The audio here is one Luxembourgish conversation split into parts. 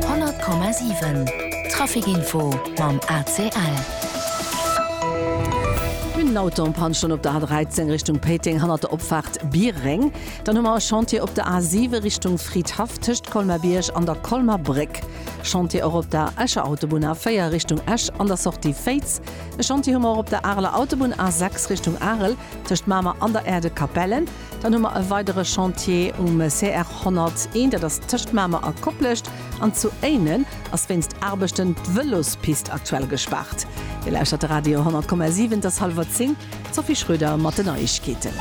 100,7 Trafic Info mam ACL. Mir hunn en Auto en Panne stoen op der A13 Richtung Péiteng hannert der Opfaart Bieréng. Dann hu mer e Chantier op der A7 Richtung Fridhaff tëscht Colmer-Bierg an der Colmer Bréck. Chantier och op der Escher Autobunn A4 Richtung Esch an der Sortie Féiz. E Chantier hu mer och op der Areler Autobunn A6 Richtung Arel tëscht Mamer an der Aire de Capellen. Dann hu mer e weidere Chantier um CR 101, dat ass tëscht Mamer a Koplescht. An zu Éinen ass wéinst Aarbechten d'Vëlospist aktuell gespaart. Dir lauschtert de Radio 10,7, et ass hallwer zéng. D'Sophie Schröder mat den Neiegkeeten.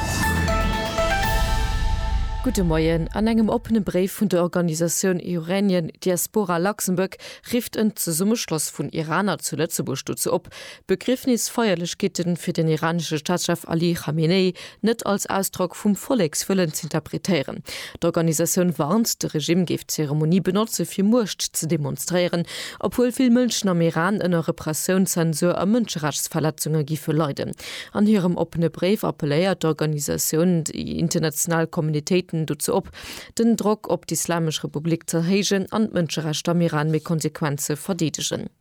Gudde Moien. An engem oppene Bréif vun der Organisatioun Iranian Diaspora Luxembourg rifft en Zesummeschloss vun Iraner zu Lëtzebuerg dozou op, d'Begriefnisfeierlechkeete fir den iranesche Staatschef Ali Khamenei net als Ausdrock vum Vollekswëllen z'interpretéieren. D'Organisatioun warnt, de Regime géif d'Zeremonie benotze fir Muecht ze demonstréieren, obwuel vill Mënschen am Iran ënner Repressioun, Zensur a Mënscherechtsverletzunge giffe leiden. An hirem oppene Bréif appelléiert d'Organisatioun déi international Communitéiten dozou op, den Drock op d'Islamesch Republik z'erhéijen an d'Mënscherechter am Iran méi konsequent ze verdeedegen.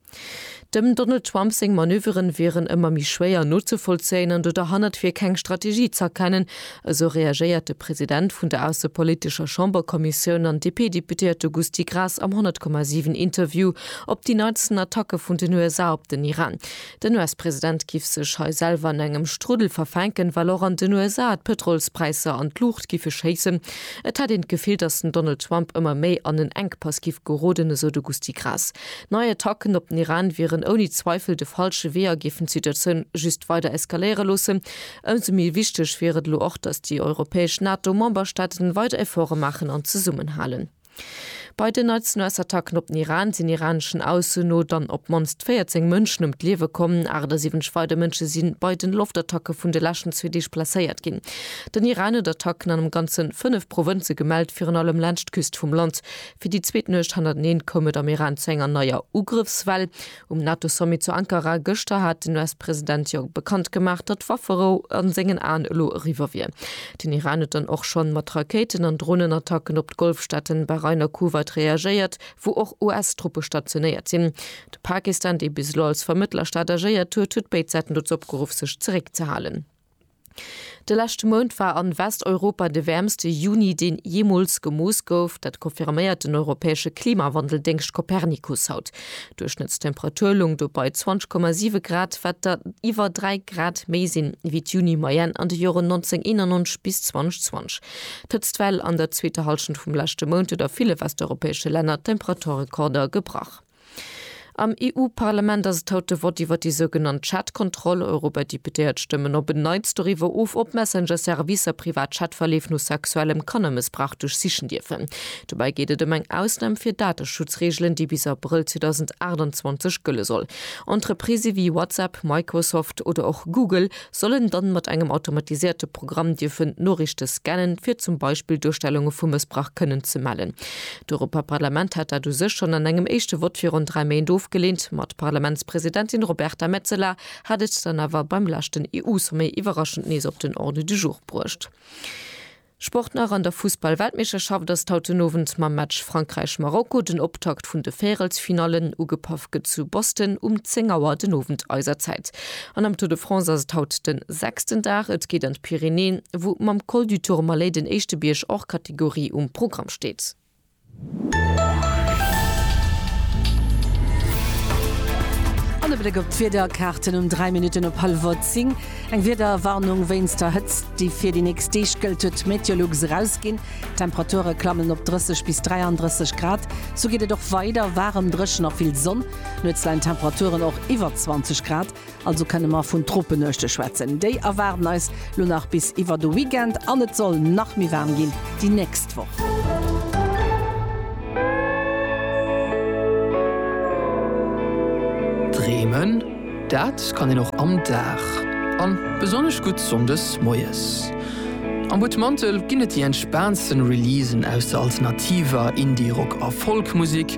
Dem Donald Trump seng Manöveren wieren ëmmer méi schwéier nozevollzéien an do derhannert wier keng Strategie z'erkennen, esou reagéiert de President vun der aussepolitescher Chamberkommissioun an DP-Deputéierte Gusty Graas am 100,7 Interview op déi neitsten Attacke vun den USA op den Iran. Den US-President giff sech hei selwer an engem Struddel verfänken, well och an den USA d'Pëtrolspräisser an d'Luucht giffe schéissen. Et hätt een d'Gefill, datt den Donald Trump ëmmer méi an en Enkpass giff geroden, esou de Gusty Graas. Nei Attacken op den Iran wieren ouni Zweifel de falsche Wee a géifen d'Situatioun just weider eskaléiere loossen. Ëmsou méi wichteg wier et elo och, datt déi europäesch NATO-Memberstaaten weider Efforte maachen an zesummenhalen. Bei den Neizenoass-Attacken op den Iran sinn iraneschen Aussen no dann op d'mannst 14 Mënschen ëm d'Liewe komm. 78 weider Mënsche si bei de Loftattacke vun de leschten zwee Deeg blesséiert ginn. Den Iran huet Attacken an am Ganze fënnef Provënze gemellt, virun allem laanscht d'Küst vum Land. Fir déi zweet Nuecht hannerteneen koum et am Iran zu enger neier Ugrëffswell. Um NATO-Sommet zu Ankara gëschter hat den US-President jo bekannt gemaach, datt d'Wafferou a sengen Aen elo eriwwer wier. Den Iran huet dann och schonn mat Rakéiten an Dronenattacken op d'Golfstaaten Bahrain a Kuwait reagéiert, wou och US-Truppe stationéiert sinn. De Pakistan, dee bis elo als Vermëttlerstaat agéiert huet, huet béid Säiten dozou opgeruff sech zeréckzehalen. De leschte Mount war an Westeuropa de wäermste Juni deen jeemools gemooss gouf. Dat confirméiert den europäesche Klimawandeldéngscht Copernicus haut. Duerchschnëttstemperatur loung do bei 20,7 Grad, wat der iwwer 3 Grad méi sinn ewéi d'Juni-Moyenne an de Joren 1991 bis 2020. D'Hëtztwell an der zweeter Hallschent vum leschte Mount huet a ville westeuropäesche Länner d'Temperaturrekorder gebrach. Am EU-Parlament ass et haut de Vott iwwer déi sougenannt Chat-Kontroll. Europadeputéiert stëmmen op en Neits doriwwer of, ob Messenger-Servicer privat Chat-Verleef no sexuellem Kannermëssbrauch duerchsichen dierfen. Dobäi geet et ëm eng Ausnam fir Dateschutzreegelen, déi bis Abrëll 2028 gëlle soll. Entreprisë wéi WhatsApp, Microsoft oder och Google soll en dann mat engem automatisierte Programm dierfen d'Noriichte scannen, fir zum Beispill Duerstellunge vu Mëssbrach kënnen ze mellen. D'Europaparlament hat dat u sech schonn an engem éischte Vott virun dräi Méint ofgeleent, ma d'Parlamentspresidentin Roberta Metsola hat et dann awer beim leschten EU-Sommet iwwerraschend nees op den Ordre du jour bruecht. Sport nach, An der Fussball-Weltmeeschterschaft ass haut den Owend mam Match Frankräich-Marokko den Optakt vun de Värelsfinallen. Ugepaff gëtt zu Boston um 10 Auer den Owend eiser Zäit. An am Tour de France ass et haut den sechsten Dag. Et geet an d'Pyrenäen, wou mam Col du Tourmalet den éischte Bierg hors catégorie um Programm steet. An e Bléck op d'Wiederkaarten um 3 Minutten op hallwer 10. Eng Wiederwarnung wéinst der Hëtzt, déi fir déi nächst Deeg gëllt, huet Meteolux erausginn. D'Temperature klammen op 30 bis 33 Grad. Sou geet et och weider, waarem, dréchen a vill Sonn. Nuets leien d'Temperaturen och iwwer 20 Grad. Also kënne mer vun Tropenuechte schwätzen. Déi erwaarden eis lo nach bis iwwer de Weekend an et soll nach méi waarm ginn déi nächst Woch. Dreemen, dat kann een och am Dag an besonnesch gutt sonndes moies. Am Butmantel ginn et déi entspaantsten Releasen aus der alternativer, Indie-, Rock a Folk-Musek.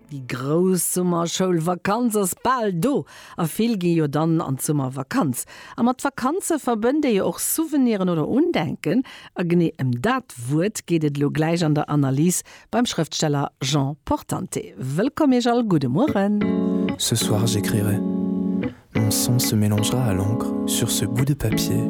Déi grouss Summerschoulvakanz ass bal do a vill gi jo dann an d'Summervakanz. A mat Vakanze verbënnt ee jo och Souveniren oder Undenken. A genee ëm dat Wuert geet et elo gläich an der Analys beim Schrëftsteller Jean Portante. Wëllkomm Iech all, gudde Mueren. Ce soir j'écrirai, mon sang se mélangera à l'encre sur ce bout de papier.